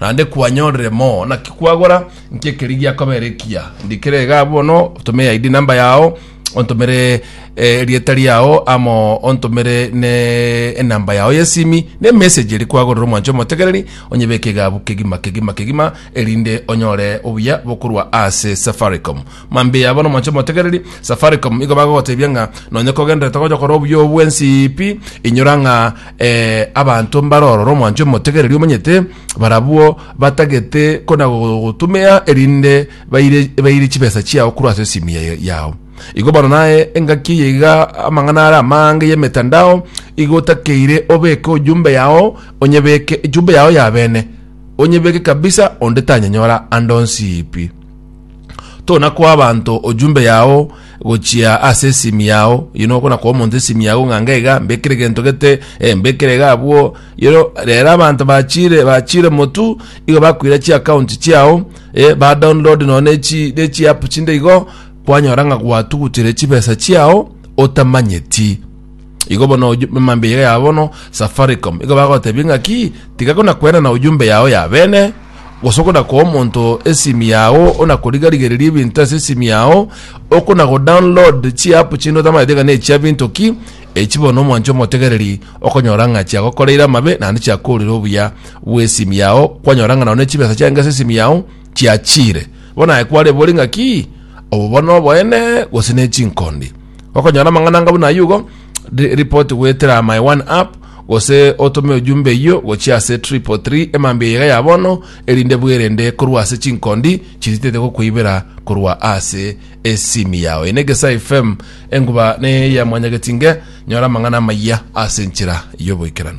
Naende kwanyorire mo, naki kwagora? Nki ekeri giakobera ekiya? Ndikera iga bono, tome ID number yao, ontomere eh, erieta riao, amo ontomere ne enamba yao yesimi, ne message eri kwagorera omwanche omotegereri, onyebeke igabu kegima kegima kegima, erinde onyore obuya bokorwa ase Safaricom. Mambia yabo nomochie motegereri Safaricom nigo bagogotebia ng'a nonye kogenderete gocha kora obuya obo bwensipi inyora ng'a eh, abanto mbarorora omwancho motegereri omanyete barabwo batagete kona gogotumia erinde baire baire chibesa chiao korwa ase esimu ya- yao igo bono naye engaki eye iga amang'ana are amange y'emetandao igo otakeire obeke ojumbe yao onyebeke ejumbe yao ya bene onyebeke kabisa onde tanyanyora ande onsipi tona koa abanto ojumbe yao gochia ase esimi yao you know kona koa omonto esimi yao ng'a ngaiga mbekire egento gete eh, mbekire iga abwo you know rero abanto bachire bachire motu igo bakoira chi account chiao eh, ba download no nechi nechi app chinde igo kwanyora ng'a gwatugutire chibesa chiao otamanyeti Igo bono oju- mambia iga ya bono safaricom igo bagotebia ng'aki tiga kona kwenana ojumbe yao ya bene gose okona koa omonto esimi yao ona korigarigereria ebinto ase esimi yao okona go download chiapu chinde otamaete ng'a nechia binto ki echi bono omwanchi omotegereri okonyora ng'a chiagokoreire amabe naende chiakorire obuya bw'esimi yao kwanyora ng'a nao ne chibesa chiange ase esimi yao chiachire bono aye kwarebe ore ng'aki obo bono oboene gose ne chinkondi Gokonyora amang'ana anga buna ayio igo, ri- report goetera my one app gose otome ojumbe eyio gochia ase triple three emambia eyaiga ya bono erinde bwerende korwa ase chinkondi chiritete gokweibera korwa ase esimi yao. Eye n'Egesae FM, enguba neye ya Mwanyagetinge, nyora amang'ana amaya ase enchera y'oboikeranu.